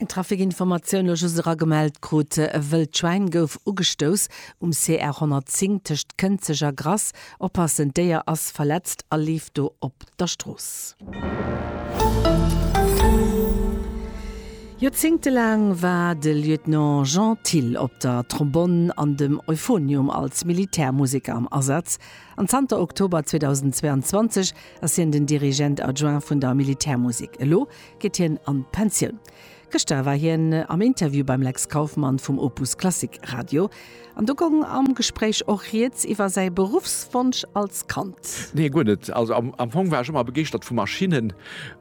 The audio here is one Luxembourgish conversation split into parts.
Eng Trafikinformatioun elo just era gemellt krut, E wëllt Schwäin gouf ugestouss um CR 110 tëscht Kënzeg a Grass. Oppassen, d'Déier ass verletzt a leeft do op der Strooss. Joerzéngte laang war de Lieutenant Jean Thill op der Trombonn an dem Euphonium als Militärmuseker am Asaz an zanter Oktober 2022 ass hien den Dirigent adjoint vun der Militärmusek. Elo geet hien an d'Pensioun. Gëschter war hien am Interview beim Lex Kauffmann vum Opus Klassik Radio an do goung am Gespréich och rieds iwwer säi Beruffswonsch als Kand. Nee, guer net. Also am Fong war ech ëmmer begeeschtert vu Maschinnen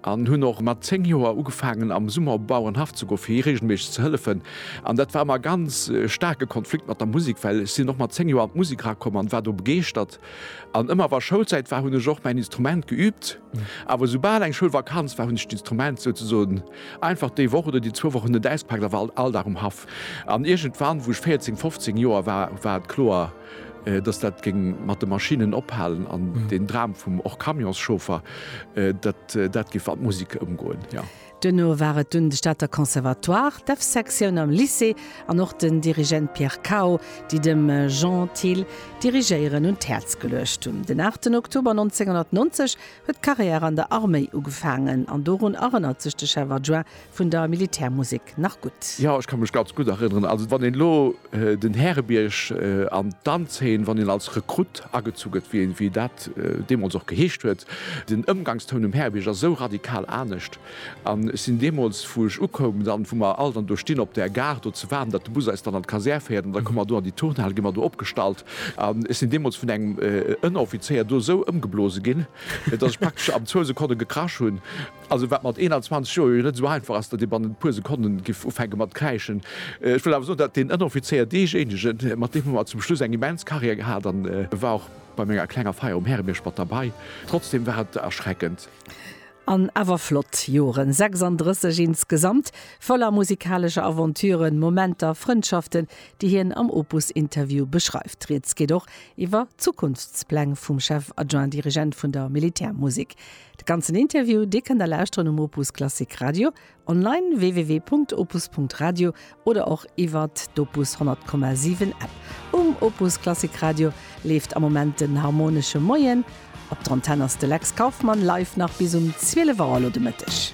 an hunn och mat 10 Joer ugefaangen am Summer op Bau an Haff ze goen, fir hie reegelméisseg ze hëllefen. An dat war ëmmer e ganz staarke Konflikt mat der Musek, well ech sinn och mat 10 Joer an d'Musek erakomm an war do begeeschtert. An ëmmer wa Schoulzäit war, hunn ech och mäin Instrument geüübt. Awer esoubal eng Schoulvakanz war, hunn ech d'Instrument souzesoen einfach déi Woch oder déi zwou Wochen net auspaakt a war all Dag um Haff. An iergendwann, wou ech 14, 15 Joer war, war et kloer, dass dat géing mat de Maschinnen ophalen an deen Dram vum och Camionschauffer, dat dat géif an d'Musek ëmgoen, jo. Duerno war et dunn de Stater Conservatoire, d'Evsektioun am Lycée an och den Dirigent Pierre Cao, déi dem Jean Thill d'Dirigéieren un d'Häerz geluecht hunn. Den 8 Oktober 1990 huet d'Carrière an der Arméi ugefaangen an dorun erënnert sech de Chef Adjoint vun der Militärmusek nach gutt. Jo, ech ka mech ganz gutt erënneren. Also wann een elo. Den Härebierg an d'Danzeen, wann een als Rekrutt agezu gëtt, wéi een, wéi dat deemools och geheescht huet. Den Ëmgangstoun um Härebierg ass esou radikal anescht. An ech sinn deemools, wou ech ukoum, dann, wou mer all dann do stinn op där Gare do ze waarden, datt de Bus eis dann an d'Kasär féiert, an da komme mer do an déi Turnhal, gi mer do opgestallt. An ech sinn deemools vun engem Ënneroffizéier do esou ëmgeblose ginn, datt ech praktesch am zwou Sekonne gekrasch hunn. Also wat mat 21 Joer jo net esou einfach ass, datt ee bannent e puer Sekonnen géif ufänke mat kräischen. Ech wëll awer soen, datt deen Ënneroffizéier, deejéinegen, mat deem hu mer zum Schluss eng immens Carrière gehat an e war och bei menger klenger Feier um Härebierg mat derbei. Trotzdem war et erschreckend. An awer flott Joren, 36 insgesamt, voller musikalescher Aventuren, Momenter, Frëndschaften, déi hien am Opus-Interview beschreift. Rieds geet och iwwer Zukunftspläng vum Chef-Adjoint-Dirigent vun der Militärmusek. De ganzen Interview, dee kënnt der lauschteren um Opus Klassik Radio, online www.opus.radio oder och iwwert d'Opus 100,7 App. Um Opus Klassik Radio leeft am Moment den Harmonesche Moien. Op der Antenn ass de Lex Kauffmann live nach bis um 12 Auer elo de Mëtteg.